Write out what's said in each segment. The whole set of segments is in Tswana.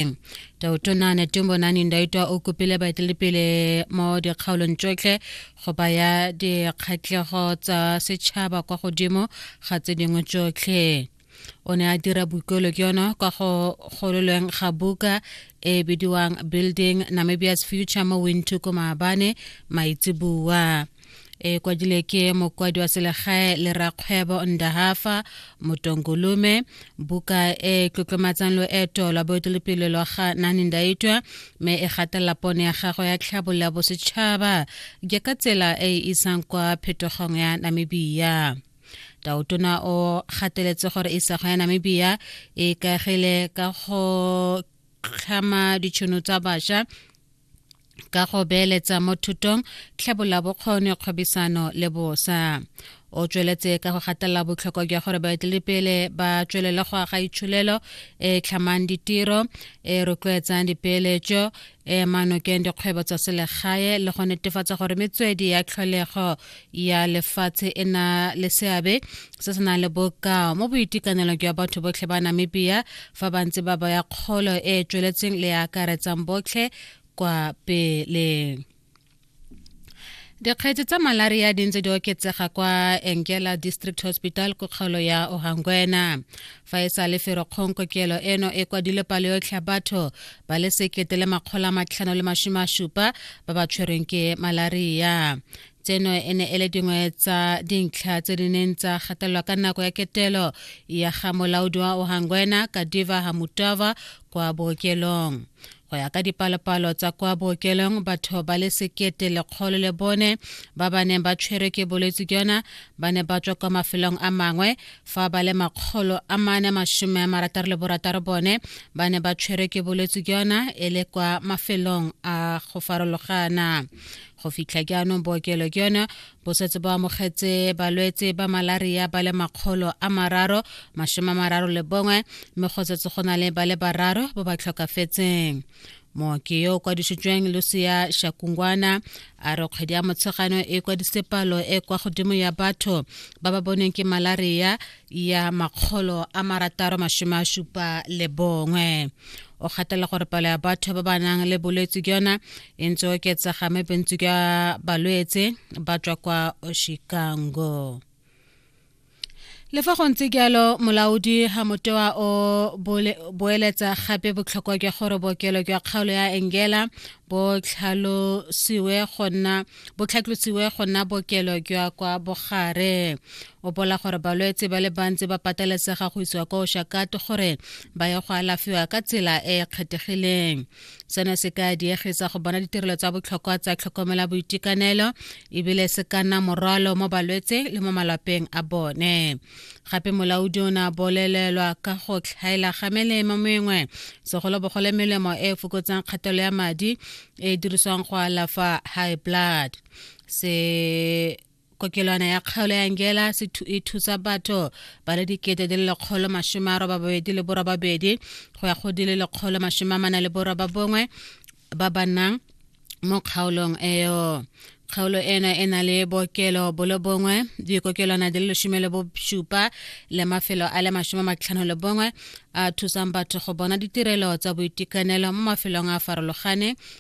Jerusalem. Tautona Netumbo Nani Ndaitwa o kopile baeteledipele mo dikgaolong tsotlhe go baya dikgatlhego tsa setšhaba kwa godimo ga tse dingwe tsotlhe. o ne a dira boikuelo ke yona kwa go gololweng ga buka e bidiwang building namibia's future mo wintuku maabane maitseboa e kwadile ke mokwadi wa selegae le rakgwebo ndahafa motongolume buka e tlotlomatsang loeto la boetelepele lwa ga nani ndaitwa mme e gatelela pono ya gagwe ya tlhabololo ya bosetšhaba ke ka tsela e e isang kwa phetogong ya namibia taotona o gateletse gore isago ya namibia e kagile ka go tlhama ditšhono tsa bašwa ka go beeletsa mo thutong tlhabola bokgoni kgwebisano le bosa o tsweletse ka go gatelela botlhokwa jwa gore baeteledipele ba tswelele go aga itsholelo e tlhamang ditiro e rotloetsang dipeeletso e manokeng dikgwebo tsa selegae le go netefatsa gore metswedi ya tlholego ya lefatshe e na le seabe se se nang le bokao mo boitekanelong jwa batho botlhe ba namibia fa ba ntse ba baya kgolo e e tsweletseng le e akaretsang botlhe kwa pele dikgetse tsa malaria di ntse di oketsega kwa engela district hospital ko kgaolo ya ohangwena fa e sa le ferokgong kokelo eno e kwadile palo yotlhe ya batho ba le sekete le makgolo a matlhano le masome a supa ba ba tshwerweng ke malaria tseno e ne e le dingwe tsa dintlha tse di neng tsa gatelelwa ka nako ya ketelo ya ga molaodi wa ohangwena kadiva hamutava kwa bookelong go ya ka dipalopalo tsa kwa bookelong batho ba le sekete lekgolo le bone ba ba neng ba tshwerwe ke bolwetse jona ba ne ba tswa kwa mafelong a mangwe fa ba le makgolo a mane masome a marataro le borataro bone ba ne ba tshwerwe ke bolwetse jona e le kwa mafelong a go farologana go fitlha jaanong bookelo ke yone bo setse bo amogetse balwetse ba malaria ba le makgolo a mararo masome a mararo le bongwe mme go setse go na le ba le bararo ba ba tlhokafetseng mooki yo o kwadisitsweng lucia shakungwana a re kgwedi ya motshegano e kwadisitse palo e kwa godimo ya batho ba ba boneng ke malaria ya makgolo a marataro masome a supa le bongwe o gatela gore palo ya batho ba ba nang le bolwetse ke yona e ntse oketsega mme bontsi ka balwetse ba tswa kwa chicago le fa go ntse jalo molaodi ga motewa o boeletsa gape botlhokwa jwa gore bookelo jwa kgaolo ya engela bo tlhalosiwe go nna bo tlhatlosiwe go nna bookelo jwa kwa bogare o bola gore balwetse ba le bantsi ba pateletsega go isiwa kwa oshakato gore ba ye go alafiwa ka tsela e e kgethegileng seno se ka diegetsa go bona ditirelo tsa botlhokwa tsa tlhokomela boitekanelo ebile se ka nna morwalo mo balwetse le mo malapeng a bone gape molaodi o ne a bolelelwa ka go tlhaela ga melemo mengwe segolobogole melemo e e fokotsang kgatelo ya madi e e dirisiwang go alafa high blood se kokelwana ya kgaolo ya ngela e thusa batho ba le dikete di le lekgolo masome a robababedi le borobabedi go ya go di le lekgolo masome a mana le borobabongwe ba ba nnang mo kgaolong eo kgaolo ena e na le bookelo bolo bongwe dikokelwana di le lesome le bosupa le mafelo a le masome matlhano le bongwe a thusang batho go bona ditirelo tsa boitekanelo mo mafelong a farologane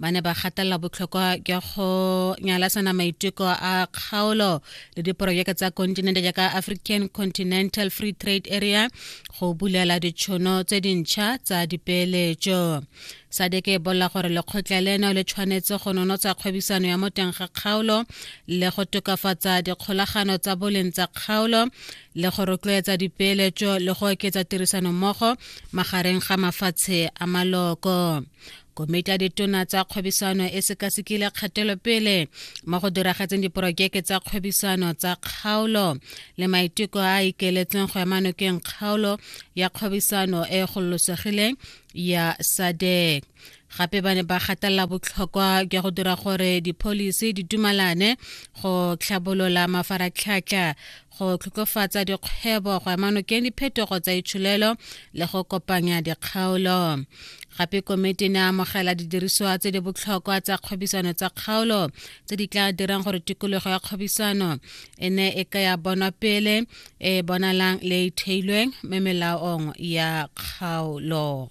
ba ne ba gatelela botlhokwa jwa go nyalasana maiteko a kgaolo le diporojeke tsa kontinente jaaka african continental free trade area go bulela ditšhono tse dintšha tsa dipeeletso sadeke e bolela gore lekgotla leno le tshwanetse go nonotsa kgwebisano ya mo teng ga kgaolo le go tokafatsa dikgolagano tsa boleng tsa kgaolo le go rotloetsa dipeeletso le go oketsa tirisanommogo magareng ga mafatshe a maloko komiti ya ditona tsa kgwebisano e sekasekile kgatelopele mo go diragatseng diporojeke tsa kgwebisano tsa kgaolo le maiteko a a ikeletseng go ema nokeng kgaolo ya kgwebisano e e gololosegileng ya sadek gape ba ne ba gatelela botlhokwa jwa go dira gore dipholisi di dumalane go tlhabolola mafaratlhatlha go tlhokofatsa dikgwebo go amanokeng diphetogo tsa itsholelo le go kopanya dikgaolo gape komiti ne amogela didirisiwa tse di botlhokwa tsa kgwebisano tsa kgaolo tse di tla dirang gore tikologo ya kgwebisano e ne e ka ya bonwa pele e bonalang le e theilweng me melaong ya kgaolo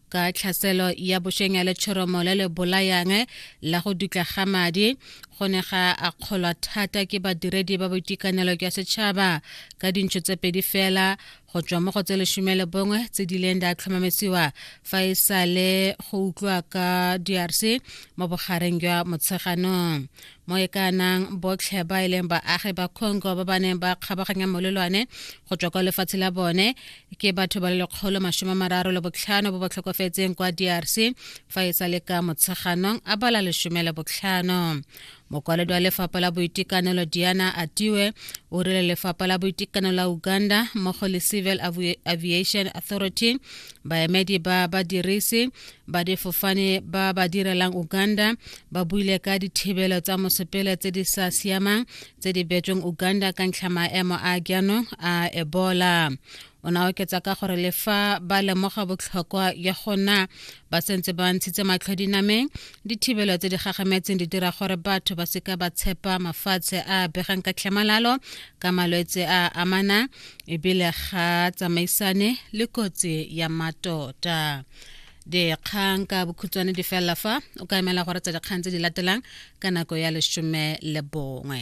ka tlhaselo ya bošeng ya letshoromo le le bolayang la go dutla ga madi go ne ga akgolwa thata ke badiredi ba boitekanelo jwa setšhaba ka dintšho tse pedi fela go tswa mo go tse lesome le bongwe tse di leng di a tlhomamisiwa fa e sa le go utlwa ka drc mo bogareng jwa motsheganong mo e ka nang botlhe ba e leng baagi ba congo ba ba neng ba kgabaganya molelwane go tswa kwa lefatshe la bone ke batho ba le lekgolo masome mararo le botlhano ba ba tlhokofetseng kwa drc fa e sa le ka motsheganong a bala lesome le botlhano mokwaledi wa lefapha la boitekanelo diana atiwe o rile lefapha la boitekanelo la uganda mmogo le civil aviation authority baemedi ba badirisi ba difofane ba ba direlang uganda ba buile ka dithibelo tsa mosepele tse di sa siamang tse di betsweng uganda ka ntlha maemo a jaanong a ebola o ne a oketsa ka gore le fa ba lemoga botlhokwa ya go na ba sentse ba ntshitse matlho dinameng dithibelo tse di gagametseng di dira gore batho ba seka ba tshepa mafatshe a begang ka tlhamalalo ka malwetse a amanang ebile ga tsamaisane le kotsi ya matota dikgang ka bokhutshwane di felela fa o ka emela gore tsa dikgang tse di latelang ka nako ya lesome le bongwe